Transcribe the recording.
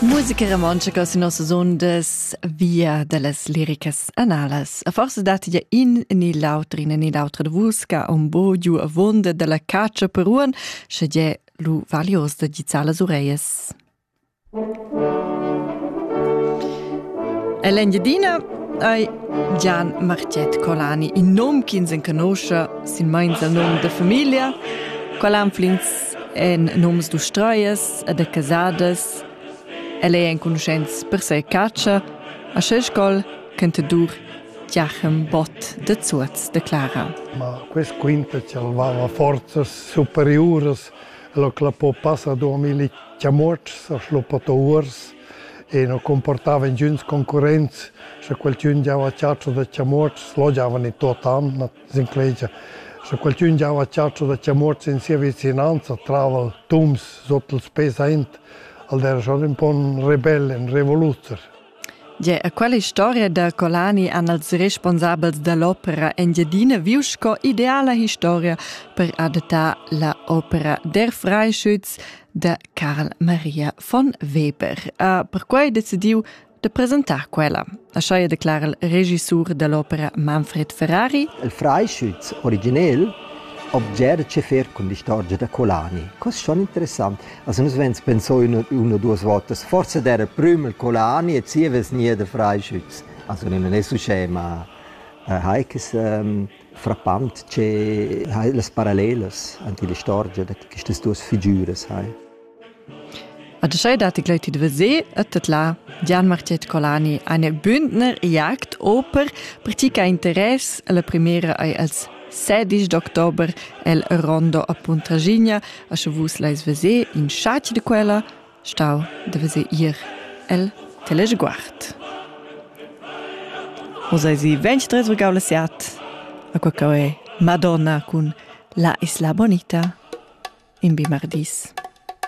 Musica romontscha cò sin nossas ondas via da las liricas analas. A forsa datti ja in ni l'auter, in ni l'autra da vus che un bo giu avonda da la caccia per uan, sche je lu valios da gizzar las ureias. El'Engiadina ei Gian Marcet Colani, in nom ch'ins enconosce sin meins al nom da famiglia. Qual anflins en nums d'ustrias e de casadas. El è enconuschents per ses catscha, a ses scol cantadur Giachem Bott de Zuoz de Clara. Ma quest quinta ci aveva forzas superiuras, lo clapò passa duemila chamuotschs a schluppatouers e no comportava ingiüns concurrents, sche qualchün giava chatscha da chamuotschs, lo giavan in tuot an. s'inclegia. Sche qualchün già ho chatscho da chia muorts in sia vicinanza trava tums sot els pes aint, al der schon ün po ün rebell, ün revoluzer. Gia a quella historia da Colani han els responsabels da l'opera Engiadina viu sco ideala historia per adattar la opera Der Freischütz da Karl Maria von Weber. Ha perquai decidiu da presentar quella, aschia declara il regissur dall'opera Manfred Ferrari. Il freischütz originel obger che fer cun l'istorgia da Colani. Cos schon interessant. Also nus wenns pensò una, una duas votas, forse der prüm il Colani e zieves nie der freischütz. Also non è su scema äh, Heike es ähm, frappant che hai las parallelas ante l'istorgia da quistas duas figüras hai. A tschei datti gleiti da veser e tedlar Gian Marchet Colani ein bündner Jagd oper per ti che interess la primera ei als sedisch d'october el Rondo a Puntraschigna a sche vus leis veser in schatg de quella stau da veser ir el Teleguard. O sei sie 23 gaula siat a quel che è Madonna cun La Isla Bonita in Bimardis.